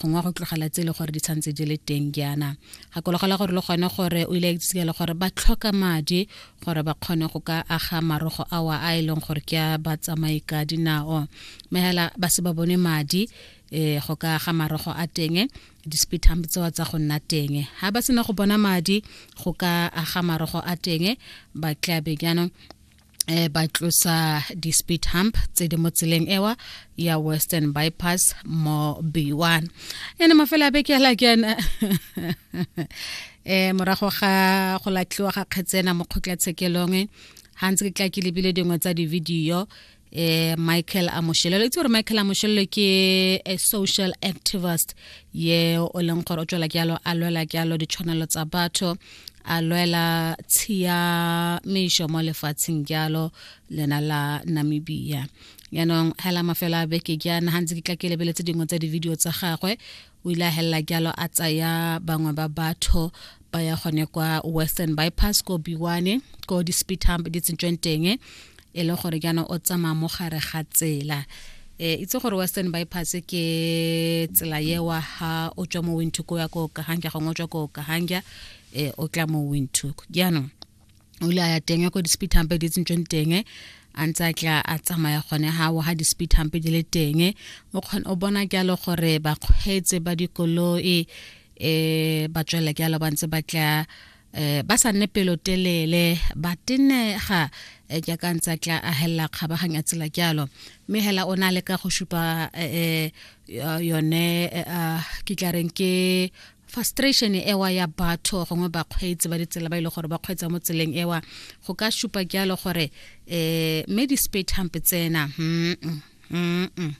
gongwe go tlogela tse e le gore di tshwanetse di le teng jaana gakologelwa gore le gone gore o ile a itsike le gore ba tlhoka madi gore ba kgone go ka aga marogo awa a e leng gore ke a batsamai ka dinao mme hela ba se ba bone madi eh go ka ga marogo a teng di-speedhump tsewa tsa go nna teng ga ba sena go bona madi go ka aga marogo a teng ba tlabe jaanong eh ba tlosa di-speed hump tse di mo tseleng ewa ya western bypass mo b1 ene mafela a beke ala ke ena eh morago ga go latlhiwa ga kgetsena mo kgotlatshekelong ga ntse ke tla ke lebile dingwe tsa di-video eh Michael Amoshelelo itse gore Michael Amoshelelo ke a social activist ye o leng gore o tswela ke alo a lwela ke alo ditshwanelo tsa batho a lwela tshiamišo mo lefatsheng jalo lena la namibia yaanong hela mafelo a beke jaana ga ntse ke tla ke lebeletse dingwe tsa di-video tsa gagwe o ile a helela jalo a tsaya bangwe ba batho ba ya gone kwa western bypass ko biwane ko di-speed hump di tsentsweng teng e le gore jaana o tsamaya mo gare ga tsela e itse gore western bypass ke tsela yewa ha o tswa mo wintook o ya ko kahanja gongwe o tswa ko kahanja um o tla mo wintook jaanong o ile a ya teng ya ko di-speed hampe di tsentsweng teng a ntse a tla a tsamaya gone ga wa ga di-speed hampe di le teng o kgone o bona jalo gore bakgweetse ba dikoloi um ba tswelela jalo ba ntse ba tla eh ba sa nne pelotelele ba tenega eh, jaaka ntse a tla ahelela kgabaganya tsela jalo mme hela o na le ka go supa eh, eh, yone ah, ke tla reng ke frustration ewa ya batho gongwe bakgweetsi ba ditsela ba ile e gore ba kgweetsa mo tseleng ewa go ka supa jalo gore um mme di-spate hampe tsena hmm. mm -mm.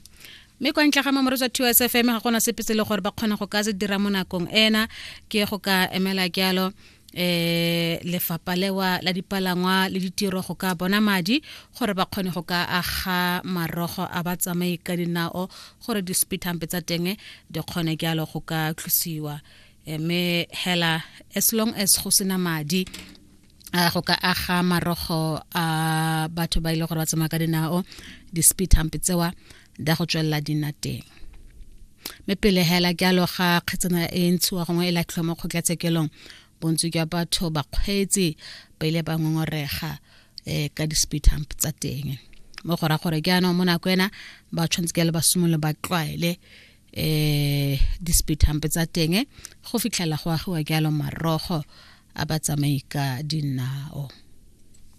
mme kwa ntle ga mamoro tswa two s f m ga gona sepe se le gore ba kgone go ka se dira mo nakong ena ke go ka emela jalo eh lefapa lewa la dipalangwa le ditiro go ka bona madi gore ba kgone go ka aga marogo a ba tsamaye ka dinao gore di-speed hampe tsa teng di kgone jalo go ka tlosiwa eh, mme hela as long as go sena madi a go ka aga marogo a batho ba ile e gore ba tsamaya ka dinao di-speed hump tsewa da go tswelela di nna teng mme pele hela ke alo ga kgetsana e ntshiwa gongwe e latlhiwa mo kgotlatshekelong bontsi jwa batho bakgweetsi ba ile ba ngongorega um ka di-speed hump tsa teng mo go ra gore ke anong mo nako ena ba tshwanetse ke le ba simolole ba tlwaele eh di-speed hump tsa teng go fitlhela go agiwa jalo marogo a ba tsamai ka dinao